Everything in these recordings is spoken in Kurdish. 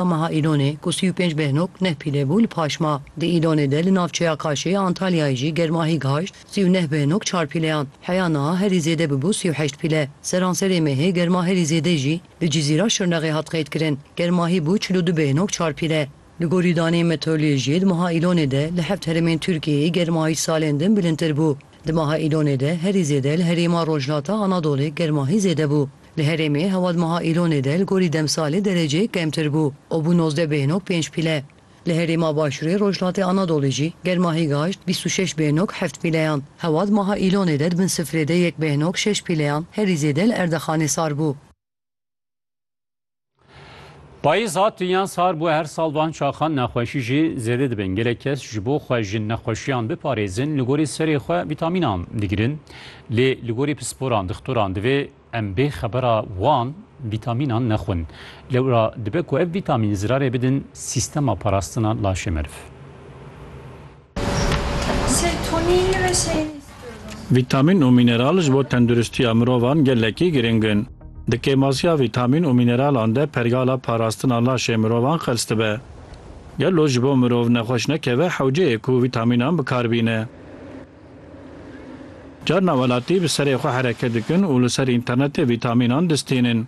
A meha Îlonê ku sî û pênc behnok neh pîlê bû li paş ma. Di Îlonê de li navçeya Kaşê ya Antalyayê jî germahî gihayşt sî û neh behnok çar pîleyan. Heya niha herî zêde bibû sî û heşt pîle. Seranserê mêhê germa herî zêde jî li Cizîra Şirnexê hat qeydkirin. Germahî bû çil û du behnok çar pîle. Li gorî daneyên meteorolojiyê di meha Îlonê de li heft herêmên Tirkiyeyê germahî salên din bilindtir bû. Di meha Îlonê de herî zêde li herêma Rojhilata Anadolê germahî zêde bû. Li herêmê hewa di meha Îlonê de li gorî demsalê dereceyê kemtir bû û bû nozdeh bêhnok pênc pîle. Li herêma Başûrê Rojhilatê Anadolê jî germa hîgaşt bîst û şeş bêhnok heft pîleyan. Hewa di meha Îlonê de di bin sifrê de yek bêhnok şeş pîleyan herî zêde li Erdexanê sar bû. Payîz hat yan sar bû her sal van çaxan nexweşî jî zêde dibin. Gelek kes ji bo xwe ji nexweşiyan biparêzin li gorî serê xwe vîtamînan digirin. Lê li gorî pisporan, dixtoran divê em bê xebera wan vîtamînan nexwin. Lewra dibe ku ev vîtamîn zirarê bidin sîstema parastina laşê meriv. Vîtamîn û mîneral ji bo tenduristiya mirovan gelekî girîng in. Di kêmasiya vîtamîn û mîneralan de pergala parastina laşê mirovan qels dibe. Gelo ji bo mirov nexweş nekeve hewceyê ku vîtamînan bi kar bîne? Carna welatî bi serê xwe hereket dikin û li ser înternetê vîtamînan distînin.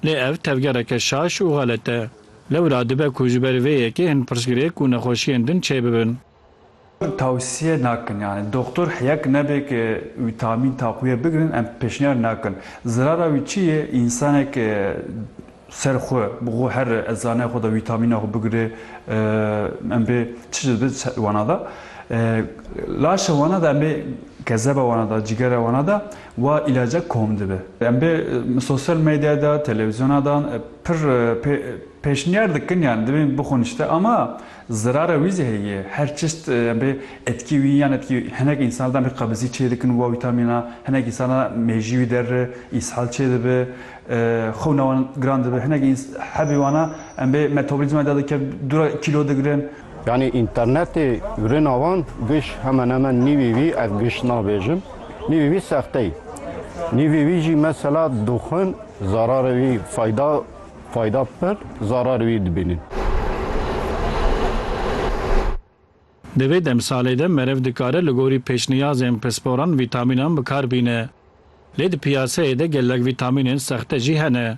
Lê ev tevgereke şaş û xelet e. Lewra dibe ku ji ber vê yekê hin pirsgirêk û nexweşiyên din çêbibin. Tewsiye nakin yani doktor heyek nebe ki wîtamîn taquye bigirin em pêşniyar nakin. Zirara wî çi ye însanek ser xwe bi xwe her ezanaya xwe de wîtamîna xwe bigire em bê çi dibe wana de. Laşa wana de em bê kezeba wana de cigera wana de Wa îlaca kom dibe. Em bê sosyal medyaya de, televîzyona de pir pêşniyar dikin yan dibê bixwin îşte ama zirara wî zî heye. Her çeşt em bê etkî wî yan etkî hinek însan de em bê qebizî çê dikin wa wîtamîna, hinek însan de mêjî wî der re îshal çê dibe, xewna wan giran dibe, hinek hebî wana em bê metabolîzma de dike dûra kîlo digirin. Yanî înternetê rina wan giş hemenemen nîvî wî ez giş nabêjim. Nîvî wî sexte yî. Nîvî wî jî mesela dixwin zararê wî fayda fayda pir zararê wî dibînin. Di vê demsalê de meriv dikare li gorî pêşniyazên pisporan vîtamînan bi kar bîne. Lê di piyaseyê de gelek vîtamînên sexte jî hene.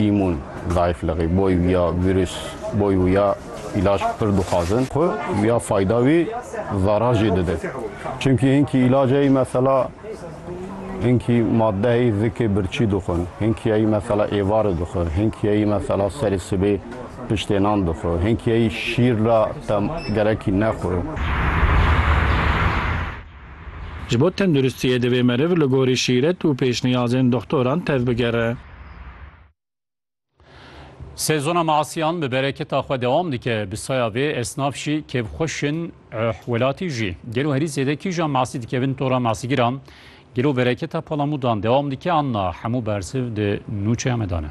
Îmûn zayifliqî, boy wîya vîrus, boy wîya îlac pir dixwazin. Xwe wîya fayda wî zarar jî dide. Çimkî hinkî îlaceyî mesela hinkî maddeyî zikê birçî dixwin, hinkîyeyî mesela êvari dixwe, hinkîyeyî mesela serê sibê piştê nan dixwe, hinkîyeyî şîr ra te gerekî nexwe. Ji bo tenduristiyê divê meriv li gorî şîret û pêşniyazên doxtoran tevbigere. Sezona measiyan bi bereketa xwe dewam dike, bi saya vê esnaf jî kêfxweş in, eh welatî jî. Gelo herî zêde kîjan measî dikevin tora measîgiran? Gelo bereketa palamûdan dewam dike an na? Hemû bersiv di nûçeya me de ne.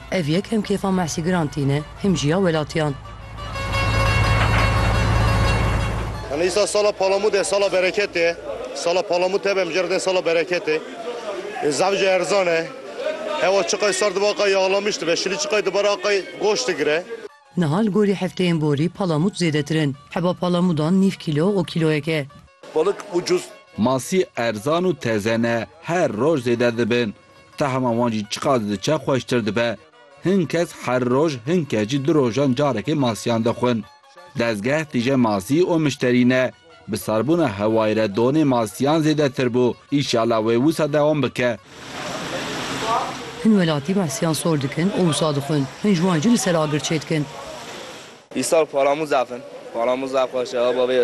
Ev yek him kêfa mehsîgiran tîne, him jî ya welatiyan. Hane îsa sala Palamûd e, sala bereketê ye. Sala Palamûd tebe mijara tên sala bereketê. Zaf jî erzan e. Hewa çiqay sar dibe aqay yağlamış dibe, şilî çiqay dibare aqay goş digire. Niha li gorî hefteyên borî palamûd zêdetir in. Heba palamûdan nîv kîlo û kîloyek e. Balık ucuz. Masî erzan û teze ne, her roj zêde dibin. Tahma wan jî çiqas didiçe xweştir dibe. Hin kes her roj, hin kes jî du rojan carekê masiyan dixwin. Dezgeh tije masî û mişterî ne. Bi sarbûna hewayê re donê masiyan zêdetir bû. Îşala wê wisa dewam bike. Hin welatî masiyan sor dikin û wisa dixwin. Hin ji wan jî li ser agir çêdikin. Îsal paramûz axin. Paramûza xweş e, aba vê ye.